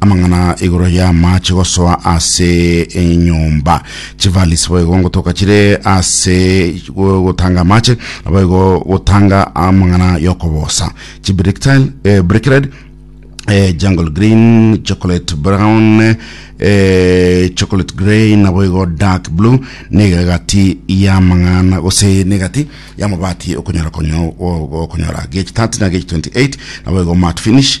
amang'ana igoro ya amache gosoa ase enyomba chivalisi boigo ngotoka chire ase gotanga amache boigo gotanga amang'ana yokobosa chibrictile eh, brickred eh, jungle green chocolate brown eh, chocolate grey nabo igo dark blue niga egati ya mang'ana gose negati ya mabati okonyora konyo okonyora gh 30 na gh 28 nabo igo mat finish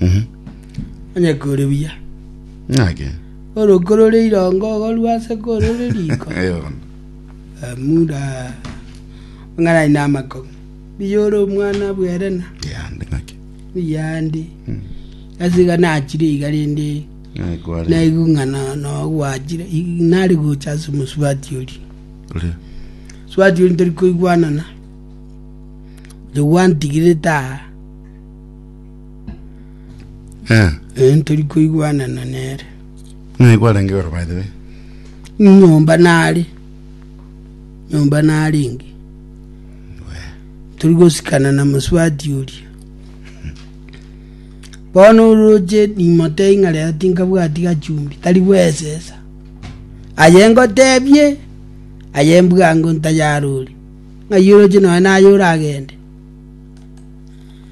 Mhm. Onye kore buya, Ng'ake. oroko rore irongo igo rwase korore riko. Eh, bono. Eh, Muda ong'anani na amakong'u. Buya ore omwana bwerena, Yande ng'ake. buyandi. Asiga nachire iga rende Ng'ake kware. naigu ng'ana nogwachire i- nari gocha ase omosubati ori Ore. subati ori tori koigwanana jogwantigire taa Eh, Eh, ntori koigwanana nere ng'a nigo arenge igoro by the way. nyomba nare nyomba narenge turi gosikana na moswati oria bono oroche nimotee ng'a rero tinkabwati gachumbi tari bwesesa aye ngotebie aye mbwango ntayarore ng'ai oroche nonya naye oragende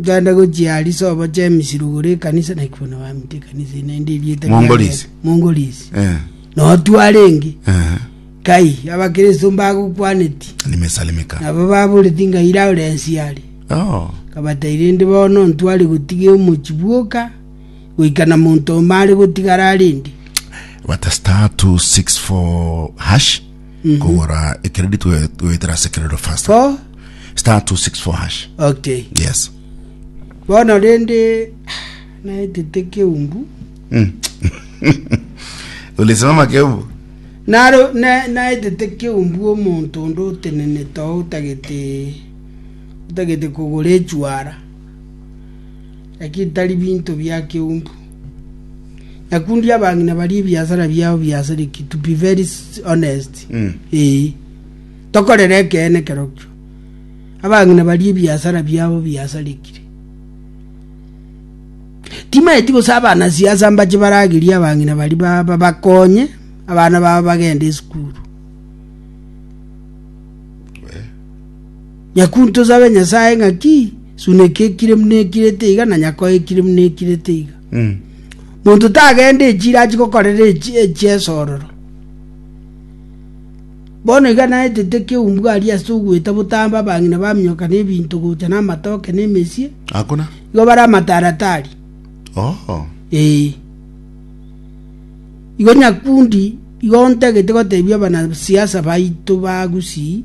Nkaenda gochia Arisa oboche Emisi rugoro ekanisa naki bono bamite ekanisa eye naende erieta riaye- Mongolisi. Mongolisi. Eh, Notware enge. eh, Kai abakristo mbagokwaneti. nimesalimika. Nabo baboreti nkaire aore ensi are. Oh, Kabata irende bono ntware gotiga omochi bwoka goika na monto omare gotigara arende. bata star 264 hash kogora ekeredi twe- tweitera ase ekerero faster bo star 264 hash okay yes bono rende naetete keumbu Mm. ulisimama kebu naro na- naetete keumbu omonto onde otenenete oo otagete otagete kogora echwara ekitari binto bia keumbu. Nyakundi abang'ina bari ebiasara biao biasareki to be very s- honest. Mm. Eh. Tokorera ekeene kerokio. Abang'ina bari ebiasara biao biasarekire. Timaeti gose abana siasa mbache baragerie abang'ina bari ba- ba- bakonye abana babo bagende esukuru. Nyakunto sabe Nyasae ng'a ki suneka ekire buna ekire ete iga, na nyakoe ekire buna ekire ete iga. Monto tagende echire achie gokorera echiesororo. Bono iga naetete ekeumbu aria ase ogoeta botambe abang'ina baminyoka na ebinto gocha na amatoke na emesie, Hakuna. igo bare amataratari. Oo. Ee. Igo Nyakundi igo ontagete gotebia abanasiasa baito ba Gusii,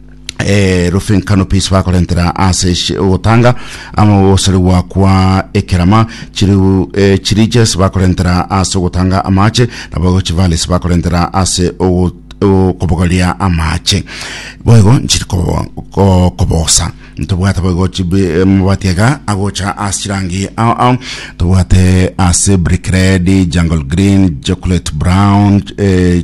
erufinkano pisi bakorentera ase shi- ogotanga ama ogosoregwa kwa ekerama chiriu eh, chirije ase bakorentera ase ogotanga amache nabo chivale ase bakorentera ase ogo- okobogoria amache boigo nchiri kobo- ko- kobosa ntobwate boigo chibi eh, mabati iga agocha ase chirangi ao ao tobwate ase brick red jungle green chocolate brown eh,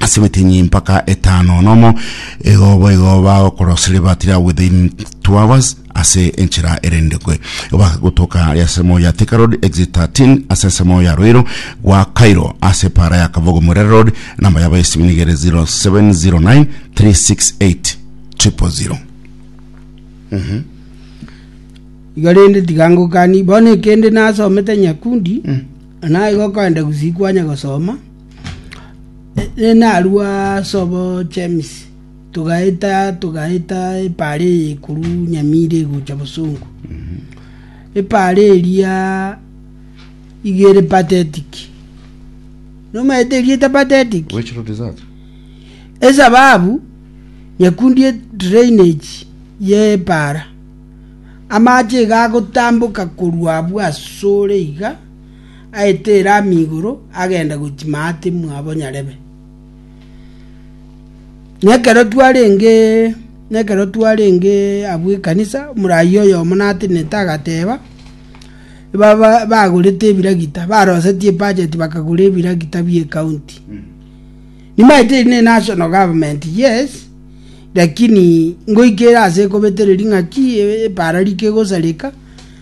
ase emetenyi mpaka etano nomo igo boigo bagokorosire batira within two hours ase enchera erendekwe bakagotoka ari ase ensemo ya Thika Road exit 13 ase ensemo ya Ruiru gwa Cairo ase para ya Kabogo Murere Road namba yabo esimu nigere 0709 368 000 iga rende tigangokani bono ekende nasomete nyakundi mm. naigo kande gusikwanya gosoma Narua ase obochemisi, togaeta togaeta epaara eye korwa Nyamira egocha Bosongo. Epaara eria iga ere pathetic. Nomaete eria ete pathetic, Which road is that? esababu nyakundi e drainage ye epaara. Amache iga agotamboka korwa abwo asore iga, aetere amigoro agende gochia maate mwabo nyarebe. Na ekero twarenge na ekero twarenge abwo ekanisa, omoraai oyomo natenenete agateba, baba bagorete ebiragita, barosetie ebudget bakagora ebiragita bie county. Nimaete eri ne national government, yes, lakini ngoikere ase ekobetereri ng'aki e- epara rike gosareka.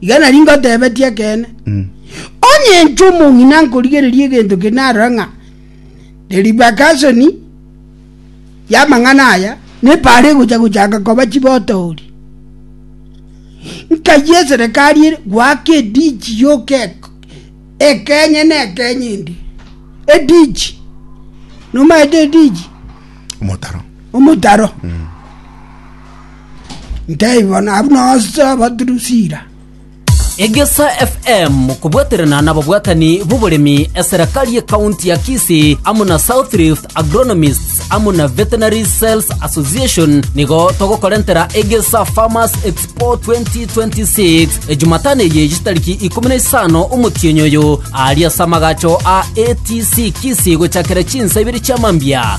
Iga nari ngotebetie ekeene, onye inche omong'ina nkorigereria egento kende narora ng'a deribakasoni y'amang'ana aya nepara egocha gochaka koba chibotoori, nkayia eserekari ere goaka edichi yoka ekenye na ekenye endi. Edichi, nomaete edichi? Omotaro. Omotaro. Mm. Ntebiwa nabu nase abatirusiira. Egesa FM kobwaterana nababwatani b'oboremi eserekari ye county ya Kisii amo na South Rift Agronomists amo na Veterinary Sales Association nigo togokorentera Egesa Farmers Expo 2026 e Jumatano eye chitariki ikomi na isano omotienyi oyo aria ase amagacho a ATC Kisii gochakera chinsa ibere chia mambia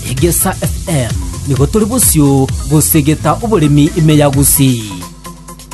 Egesa FM, nigo tore bosio gosegeta oboremi ime ya Gusii.